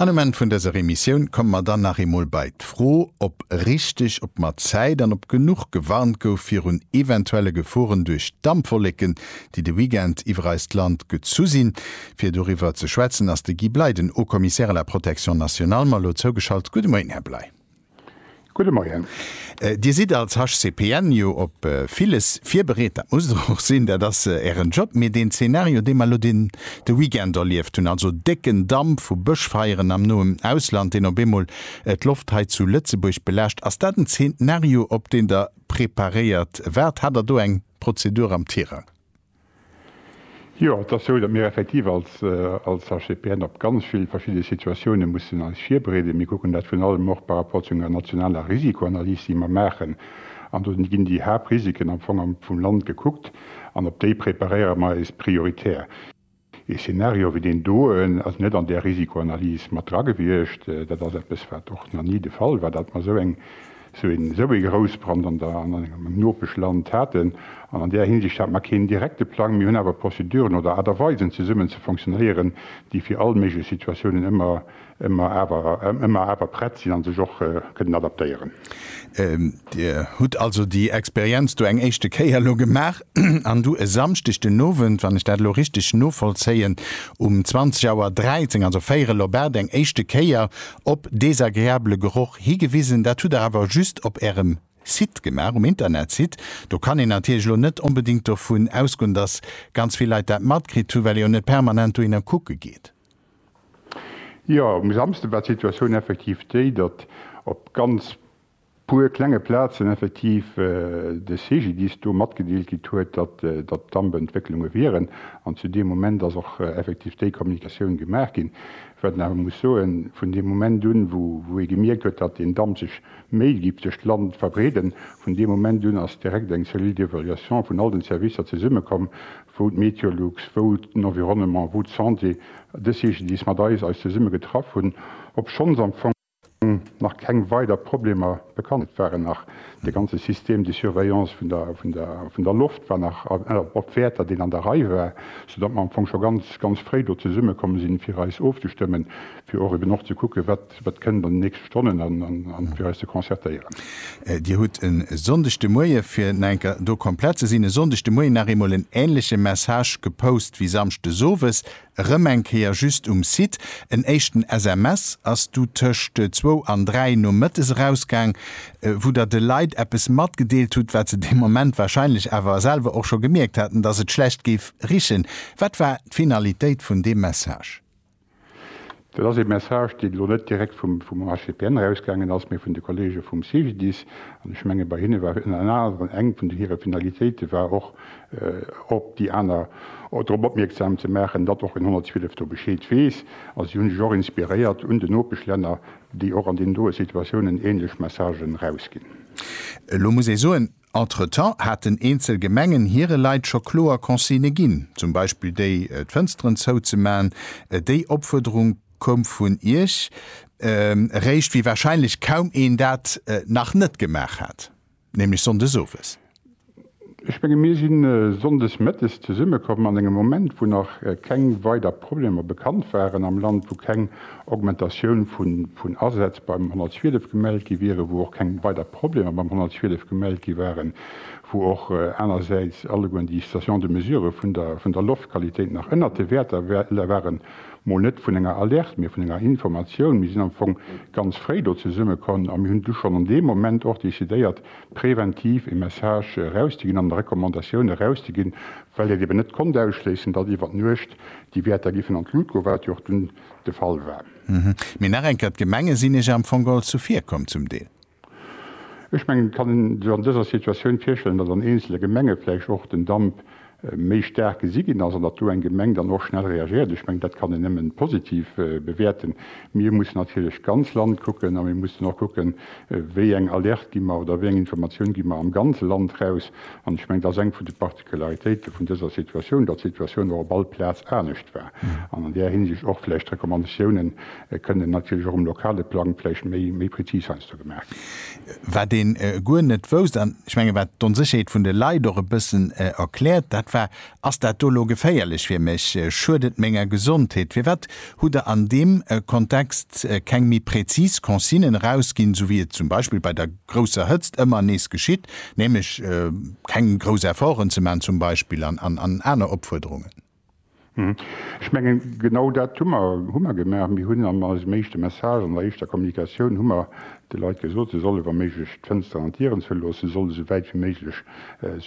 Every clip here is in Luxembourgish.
An um Enn vun dëser Emissioun komme mer dann nach eemol bei d'Fro, ob richteg, ob mat Zäit an ob genuch gewarnt gouf virun eventuelle Geforen duerch Dampwolleken, déi de Weekend iwwer eist Land gezu sinn. Fir doriwwer ze schwätzen ass de Guy Bley, den Haut-Commissaire à la protection nationale, mer elo zougeschalt. Gudde Moien, Här Bley. Gudde Moien. Dir sidd als HCPN jo op villes virbereet, dat musst Der och sinn, dat ass Ären Job. Mee deen Zeenario, dee mer elo de Weekend erlieft hunn, also décken Damp vu Bëschfeieren am noen Ausland, deen op eemol d'Loft hei zu Lëtzebuerg belaascht, ass dat en Zeenario, op deen Der preparéiert waart? Hat Der do eng Prozedur am Tirang? Jo, et ass sou, datt mir effektiv als HCPN op ganz vill verschidde Situatioune mussen eis virbereeden. Mir kucken dat virun allem och par rapport zu enger nationaler Risikoanalys, déi mer maachen. An do ginn déi Haaptrisiken am Fong vum Land gekuckt an op déi preparéiere mer eis prioritär. Ee Szenario wéi deen doen ass net an där Risikoanalys mat dra gewiescht. Dat ass eppes, wat och nach ni de Fall war, datt mer esou eng, esou een, esou ee Groussbrand an der, an engem Nopeschland haten. An an där Hinsicht hate mer keen direkte Plang. Mir hunn awer Prozeduren oder Aart a Weisen, zesummen ze fonctionnéieren, déi fir all méiglech Situatiounen ëmmer Ëmmer awer ëmmer awer prett sinn an sech och kënnen adaptéieren. Dir hutt also déi Experienz do eng éischte Kéier elo gemaach an du e Samschdeg den Owend, wann ech dat elo richteg novollzéien, um 20 Auer 13, also véierel op 8, eng éischte Kéier op desagreabele Geroch higewisen. Dat hutt Der awer just op Ärem Site gemaach, um Internetsite. Do kann een natierlech elo net onbedéngt dovun ausgoen, dass ganz vill Leit dat matkritt hunn, well ee jo net permanent dohinner kucke geet. Jo, um Samsde war d'Situatioun effektiv déi, datt op ganz puer klenge Plazen effektiv de CGDIS do matgedeelt gitt huet, datt datt Dampentwécklunge wieren. An zu deem Moment ass och effektiv déi Kommunikatioun gemaach ginn. Wat een awer muss soen, vun deem Moment un, wou wou ee gemierkt huet, datt deen Damp sech méi giff duerch d'Land verbreeden, vun deem Moment un ass direkt eng Cellule d'évaluation vun all den Servicer zesummekomm, wou d'Meteolux, wou den Environnement, wou d'Santé, dës Jeeschedis mat eis eis zesumme getraff hunn, obschonns am Fong nach keng weider Problemer bekannt. Et waren nach, de ganze System de surveillance vun der, vun der, vun der Loft war nach op Wäerter, deen an der Rei war, soudatt mer am Fong scho ganz, ganz fréi do zesummekomm sinn, fir eis ofzestëmmen, fir och eben och ze kucken, wat Wat kënnt an den nächste Stonnen an fir eis ze concertéieren? Dir hutt e Sonndeg de Moie, fir nach eng Kéier do komplett ze sinn, e Sonndeg de Moien nach eemol en änleche Message gepost wéi samschdes owes erëm eng Kéier just um Site. En éischten SMS ass du tëscht zwou an dräi nomëttes erausgaang, wou der de Leit eppes matgedeelt hutt, wat se dee Moment warscheinlech awer selwer och scho gemierkt haten, dass et schlecht géif richen. Wat war d'Finalitéit vun deem Message? Dat ass ee Message, deen elo net direkt vum HCPN erausgaangen ass, mee vun de Kollege vum CGDIS. An ech menge bei hinne war ënner anerem eng vun hire Finalitéite war och, op déi aner drop opmierksam ze maachen, datt och den 112 do Bescheed weess. A si hunn sech och inspiréiert un den Nopeschlänner, déi och an deenen doe Situatiounen änlech Messagen erausginn. Elo muss ee soen, Entretemps haten eenzel Gemengen hire Leit scho kloer Consigne ginn, zum Beispill déi, d'Fënsteren zouzemaachen. Déi Opfuerderung koum vun Iech eréischt, wéi warscheinlech kaum een dat nach net gemaach hat, nämlech sonndes owes. Ech menge mir si sonndes mëttes zesummekomm an engem Moment, wou nach keng weider Problemer bekannt waren am Land, wou keng Augmentatioun vun Asätz beim 112 gemellt gi wieren, wou och keng weider Problemer beim 112 gemellt gi waren, wou och anersäits allegueren déi Stations de mesure vun der Loftqualitéit nach ënnert de Wäerter waren, mol net vun enger Alerte, mee vun enger Informatioun. Mir sinn am Fong ganz fréi do zesummekomm a mir hunn du schonn an deem Moment och decidéiert, präventiv e Message erauszeginn an eng Recommandatioun erauszeginn, well et eeben net konnt ausschléissen, datt iwwer d'Nuecht déi Wäerter géifen an d'Lut goen, wat jo och dunn de Fall war. Mee nach eng Kéier, D'Gemenge sinn Iech am Fong all zuvir komm zum Deel. Ech mengen, et kann een sech an dëser Situatioun virstellen, datt an eenzele Gemenge vläicht och den Damp méi staark gesi ginn ass an datt do eng Gemeng dann och schnell reagiert. Ech mengen, dat kann een nëmmen positiv bewäerten. Mir mussen natierlech d'ganz Land kucken a mir mussen och kucken, wéi eng Alerte gi mer oder wéi eng Informatioun gi mer am ganze Land raus. An ech mengen, dat ass eng vun de D'Particularitéite vun dëser Situatioun, datt d'Situatioun och op all Plaz anescht war an an där Hinsicht och vläicht d'Recommandatiounen kënnen natierlech och um lokale Plang vläicht méi, méi prezis heiansdo gemaach ginn. Wat ee guer net wousst, an ech menge wat d'Onsécherheet vun de Leit och e bëssen erkläert, dat war, Ass dat do elo geféierlech fir mech? Schuet et menger Gesondheet? Firwat hutt Der an deem Kontext keng méi prezis Consignen erausginn, esou wéi et zum Beispill bei der. grousser Hëtzt ëmmer nees geschitt, nämlech keng grouss Efforten ze maachen zum Beispill an aner Opfuerderungen. Ech mengen, genau dat hu mer hu mer gemaach. Mir hunn an eisem éischte Message, an der éischter Kommunikatioun hu mer de Leit gesot, se solle wa méiglech d'Fënsteren an d'Dieren zouloossen, se solle sou wäit wéi méiglech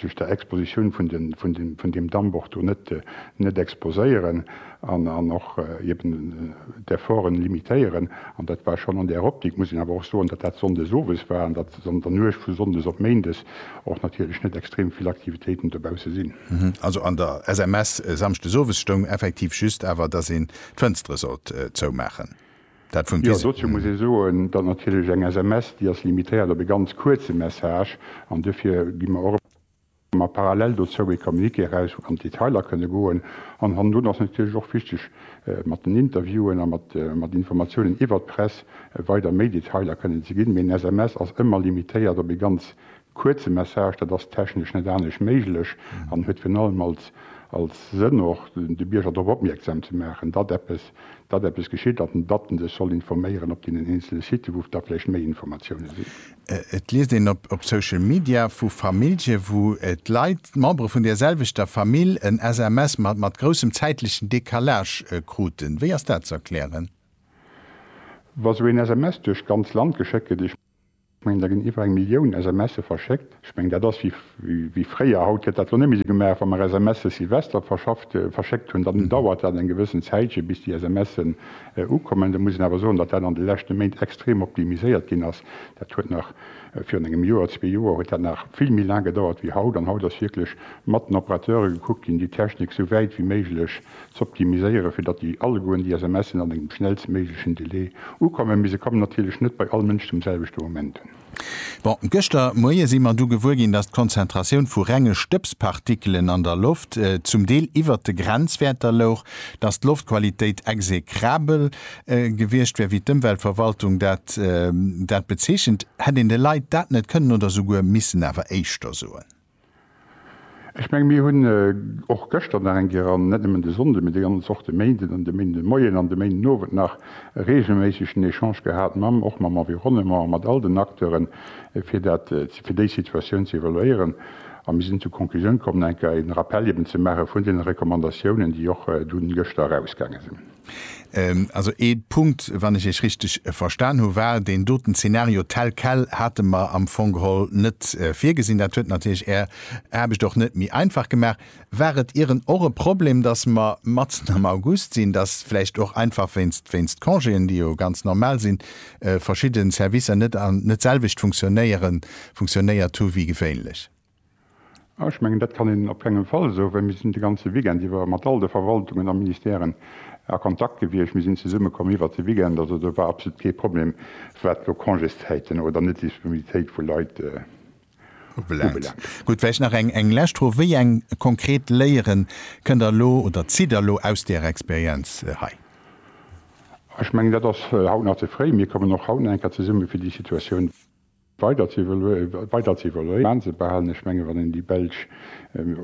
sech der Expositioun vun deem Dammbord do net exposéieren. an och eben d'Efforten limitéieren. An dat war schonn an där Optik, muss een awer och soen, datt dat sonndes owes war an datt an der Nuecht vu sonndes op méindes och natierlech net extrem vill Aktivitéiten dobausse sinn. Also an der SMS samschdes owes stoung effektiv just awer, datt een d'Fënstere sollt zoumaachen. Dat vum. Jo, dozou muss ee soen, datt natierlech eng SMS, déi ass limitéiert op e ganz kuerze Message an duerfir gi mer och. Mä parallel dozou ee Communiqué eraus, wou an d'Detailer kënne goen. An hannendrun ass natierlech och wichteg, mat den Interviewen a mat Informatiounen iwwert d'Press weider méi Detailer kënnen ze ginn. Mee en SMS ass ëmmer limitéiert op ee ganz kuerze Message. Dat ass technesch net anescht méiglech an huet virun allem als Sënn och, de Bierger drop opmierksam ze maachen, datt eppes, datt eppes geschitt an datt en sech soll informéieren op deenen eenzele Siten, wou da vläicht méi Informatioune sinn. Et liest een op Social Media vu Famillje wou d'Leit, d'Membere vun der selwechter Famill, en SMS mat mat groussem zäitlechen Decalage kruten. Wéi ass dat ze erklären? Wa sou een SMS duerch d'ganz Land geschéckt gëtt, ech mengen da ginn iwwer eng Millioun SMSe verschéckt, ech mengen dat ass wéi fréier, haut gëtt dat elo net méi sou gemaach, wa mer SMS de Sylvester verschafft, verschéckt hunn, dann dauert dat eng gewëssen Zäitche bis déi SMSen ukommen. Da muss een awer soen, datt dat an de leschte Méint extrem optimiséiert ginn ass. Dat huet nach virun engem Joer, zwee Joer huet dat nach vill méi laang gedauert wéi haut. An haut ass wierklech mat den Operateure gekuckt ginn, déi Technik esou wäit wéi méiglech z'optimiséieren, fir datt déi allegueren déi SMSen an engem schnellstméiglechen Delai ukommen. Mee se kommen natierlech net bei all Mënsch zum selwechte Moment un. Bon, gëschter Moie si mer du gewuer ginn, datt d'Konzentratioun vu renge Stëbspartikelen an der Loft zum Deel iwwert de Grenzwäerter louch, datt d'Loftqualitéit exekrabel gewiescht wär, wéi d'Ëmweltverwaltung dat dat bezeechent, hätt een de Leit dat net kënnen oder souguer missen awer éischter soen. Ech menge mir hunn och gëschter nach eng Kéier, an net nëmmen de Sonnde mee déi ganz Woch, de Méinden an de Méindemoien an de Méindenowend nach reegelméisseg den Echange gehat mam och mam Environnement a mat all den Acteuren, fir dat fir déi Situatioun ze evaluéieren. A mir sinn zur Conclusioun komm, eng Kéier een Rappel eben ze maache vun deene Recommandatiounen, déi och dunn gëschter erausgaange sinn. Also ee Punkt, wann ech Iech richteg verstan hu war deen doten Zeenario tel quel hate mer am Fong geholl net virgesinn. Dat huet natierlech Är Aarbecht och net méi einfach gemaach. War et ieren och e Problem, datt mer matzen am August sinn, datt vläicht och einfach wéinst wéinst Congéen, déi jo ganz normal sinn, verschidde Servicer net an net d'selwecht funktionéieren funktionéiert hu wéi gewéinlech? Ech mengen, dat kann een op kengem Fall esou, well mir sinn de ganze Weekend iwwer mat all de Verwaltungen a Ministèren a Kontakt gewiescht, mir sinn zesummekomm iwwert de Weekend. Also do war absolut kee Problem, wat elo Congészäiten oder Netdisponibilitéit vu Leit ubelaangt. Gutt, vläicht nach eng lescht Fro, Wéi eng konkret Léieren kënnt Der elo oder zitt Der elo aus deeër Experienz hei? Ech mengen, dat ass haut nach ze fréi. Mir kommen och haut nach eng Kéier zesumme fir déi Situatioun. weider ze evaluéieren, ze behalen. Ech menge wann een déi belsch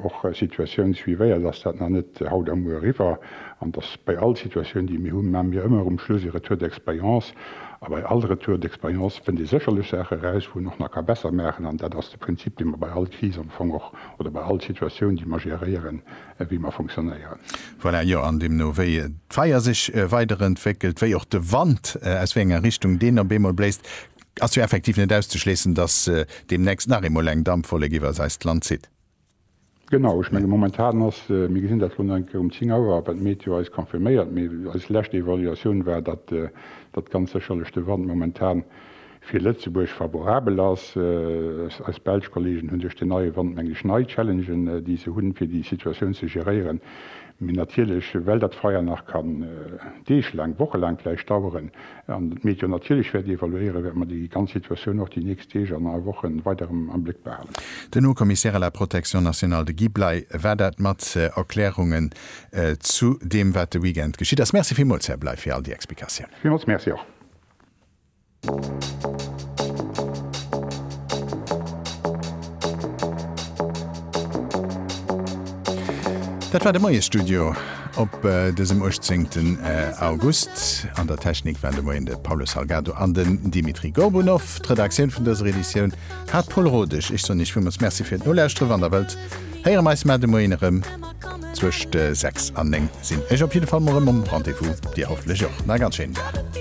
och Situatioun suivéiert, ass dat nach net haut a muer eriwwer an dass bei all Situatioun déi mir hunn, maache mir ëmmer um Schluss ee Retour d'expérience a bei all Retour d'expérience fënnt ee sécherlech Saache eraus, wou een och nach ka besser maachen an dat ass de Prinzip dee mer bei all Kris am Fong och oder bei all Situatioun déi mer geréieren, wéi mer fonctionnéieren. Voilà, jo, an deemno wéi d'Feier sech weiderentwéckelt, wéi och de Wand, aus wéi enger Richtung deen op eemol bléist, Ass jo effektiv net auszeschléissen, dass deemnächst nach eemol eng Dampwollek iwwers eist Land zitt. Genau, ech mengen momentan ass, mir gesinn dat elo nach eng Kéier um 10 Auer, wat d'Meteo eis confirméiert, mee eis lescht Evaluatioun war, datt datt ganz sécherlech de Wand momentan fir Lëtzebuerg favorabel ass. Eis belsch Kolleegen hunn duerch deen neie Wand, mengen ech, nei Challengen, déi se hunn, fir déi Situatioun ze geréieren. Mee natierlech, well dat Feier nach kann Deeg laang, Woche laang vläicht daueren an mir et jo natierlech wäerte evaluéieren, wäerte mer déi ganz Situatioun och déi nächst Deeg an a Woche weider erëm am Bléck behalen. Den Haut-Commissaire à la protection nationale, de Guy Bley, war dat mat Erklärungen zu deem, wat de Weekend geschitt ass. Merci villmools, Här Bley, fir all déi Explikatiounen. Villmools Merci och. Dat war de Moie Studio op dësem 18 August. An der Technik waren de Moien de Paulo Salgado an den Dimitri Gorbunov. D'Redaktioun vun dëser Editioun hat d'Paul Rodesch. Ech soen Iech villmools Merci fir d'Nolauschteren. Wann der wëllt, héiere mer eis mar de Moien erëm. Zwëscht 6 an 9 sinn ech op jidde Fall mol erëm um Rendez-vous, Dir hoffentlech och. Nach e ganz schéinen Dag.